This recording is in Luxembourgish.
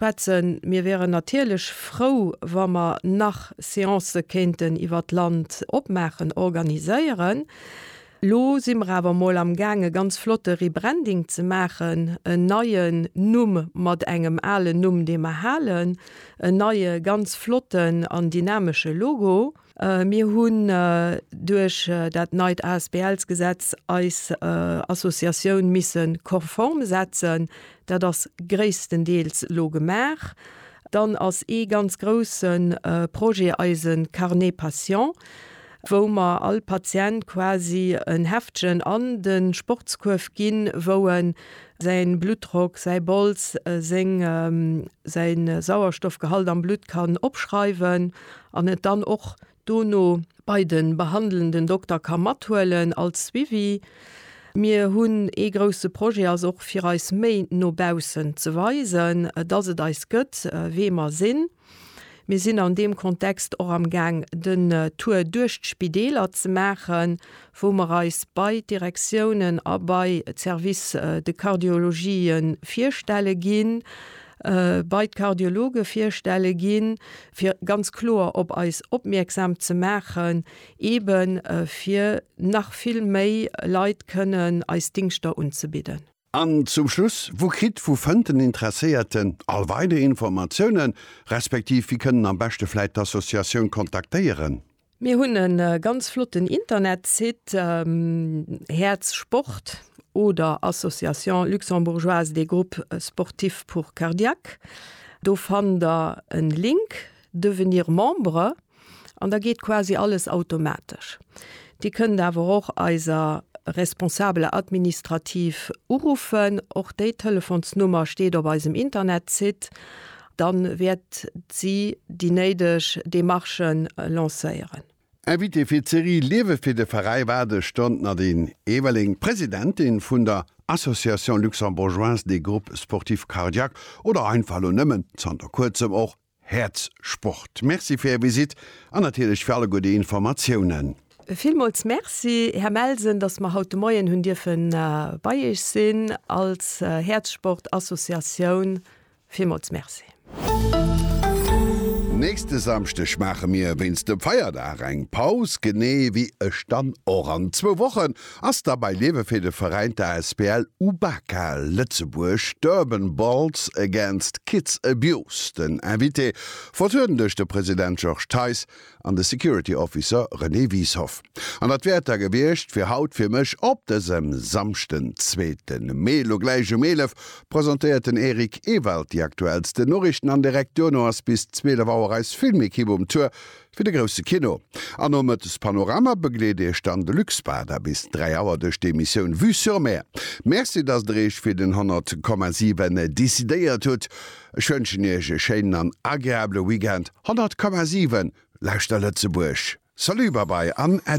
Betzen, mir wäeren natierlech frou, wa mer nach Seancë kéinten iwwer d'Land opmaachen, organiséieren. Lo si mer awer emol am Gaang e ganz flotte Rebranding ze maachen, en neien Numm mat engem alen Numm, dee mer halen, en neie ganz flotten an dynamesche Logo. Mir hunn duerch dat neit ASBLs-Gesetz eis Associatioun misse konform setzen. Dat ass gréisstendeels elo gemaach. Dann ass ee ganz grousse Projet eise Carnet Patient, wou mer all Patient quasi en Heftchen an de Sportskuerf ginn, wou e säi Bluttdrock, säi Bols, säi Sauerstoffgehalt am Blutt kann opschreiwen. an et dann och dono bei de behandelnden Dokter ka mathuelen als Suivi. Mir hunn ee grousse Projet, ass och fir eis méi no baussen ze weisen, dass et eis gëtt, wee mer sinn. Mir sinn an deem Kontext och amgaang den Tour duerch d'Spideeler ze maachen, wou mer eis bei d'Direktiounen a bei d'Services de cardiologie virstelle ginn, bei d'Kardiologe virstelle ginn, fir ganz kloer op eis opmierksam ze maachen, eeben fir nach vill méi Leit kënnen eis Dingschter unzebidden. An zum Schluss, Wou kritt wou fënnt den Interesséierten all weider Informatiounen, respektiv wie kënnen am beschte vläit d'Associatioun kontaktéieren? Mir hunn e ganz flotten Internetsite, Häerz Sport oder Association luxembourgeoise des groupes sportifs pour cardiaques. Do fannt der en Link, Devenir membre. An da geet quasi alles automatesch. Dir kënnt awer och eiser Responsable administrative uruffen, och déi Telefonsnummer steet op eisem Internetsite, dann wäert si déi néideg Demarchen lancéieren. Invitée fir d'Serie Liewe fir de Veräi war de Ston d'Nadine Everling, Presidentin vun der Association Luxembourgeoise des Groupes Sportifs Cardiaques oder einfach elo nëmmen zanter kuerzem och Häerz Sport. Merci fir Är Visitt an natierlech fir alleguer déi Informatiounen. Villmools Merci, Här Melsen, dass mer haut de Moien hunn dierfe bei Iech sinn als Häerz Sport Associatioun. Villmools Merci. Nächste Samschdeg maache mir wéinst dem Feierdag eng Paus, genee wéi ech dann och an zwou Wochen. Ass da bei Liewe fir de Veräin der asbl UBAKA Lëtzebuerg d'Urban Balls Against Kids Abuse den Invité, vertrueden duerch de President Georges Theis an de Security Officer René Wieshoff. An dat wäert da gewiescht fir haut fir mech op dësem Samschden, zweete Mee. Lo gläich um 11 presentéiert den Eric Ewald déi aktuellsten Noriichten an direkt duerno ass bis 12 Auer eis Filmekipp um Tour Fir de grousse Kino. An nomëttes Panorama begleet iech dann de Luc Spada bis 3 Auer duerch d'Emissioun Vue sur Mer. Merci, datt der iech fir den 100 Komma 7 decidéiert hutt. Ech wënschen iech e schéinen an agreabele Weekend. 100 Komma 7, Lauschter Lëtzebuerg! Salut, Babai an Äddi!